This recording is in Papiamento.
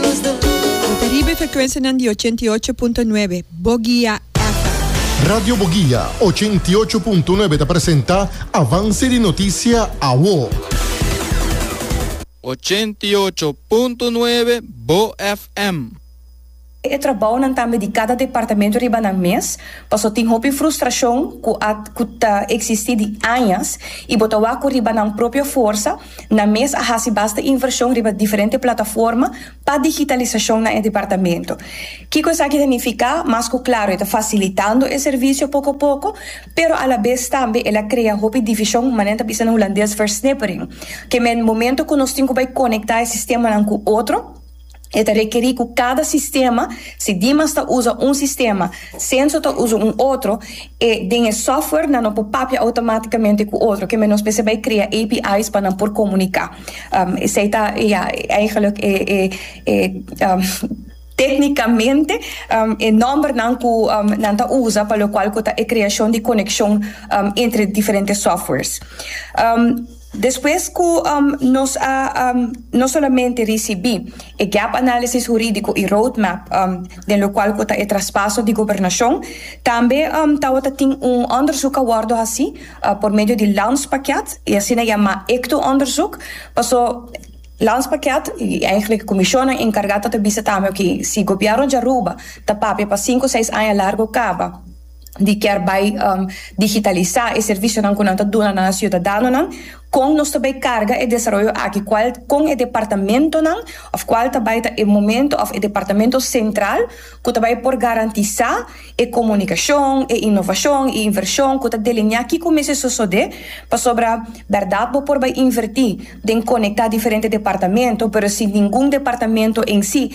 Ta riba e frekuensianan di ochenta i ocho punto nuebe Bogia FM. Radio Bogia ochenta i ocho punto nuebe ta presenta Avance di Noticia Awo. Ochenta i ocho punto nuebe Bo FM. E trabounan tambe di cada departamento riba nan mes, paso tin hopi frustracion cu a cu ta existi di añas y bo ta wak cu riba nan propio forsa, Nan mes a hasi basta invershon riba diferente plataforma pa digitalisashon na e departamento. Kiko esaki ta nifiká? Mas ku Claro e ta fasilitando e servisio poko poko, pero a la bes tambe el a krea hopi divishon, manera nan ta bisa na hulandes versnippering, kem'e momentu ku nos tin ku bai konektá e sistemanan ku otro, E ta rekerí ku kada sistema, si Dimas ta usa un sistema, Senso ta usa un otro, e den e software nan no por papia outomátikamente ku otro. Kemey nos mester bai krea API's pa nan por komuniká. Esei ta, ya, eigelijk e e e téknikamente e nòmbernan ku nan ta usa pa lokual ku ta e kreashon di konekshon entre diferente softwares. Despues cu nos a no solamente ricibi e gap análisis hurídico y roadmap den locual cu ta e traspaso di gobernacion, tambe tawata tin un onderzoek a wordo haci por medio di Landspakket, y asina yama ectoonderzoek, paso Landspakket y eigenlijk e comisionnan encarga tata bisa tambe, oké, si gobierno di Aruba ta papia pa cinco seis aña largo caba, di kier bai digitalisá e servisionan ku nan ta duna na siudadanonan, kon nos ta bai karga e desaroyo aki, kual kon e departamentonan òf kual ta bai ta e momento òf e departamento sentral ku ta bai por garantisá e komunikashon, e inovashon, e invershon ku ta delineá kiko mester sosodé pasobra bèrdat bo por bai invertí den konektá diferente departamento pero si ningun departamento en si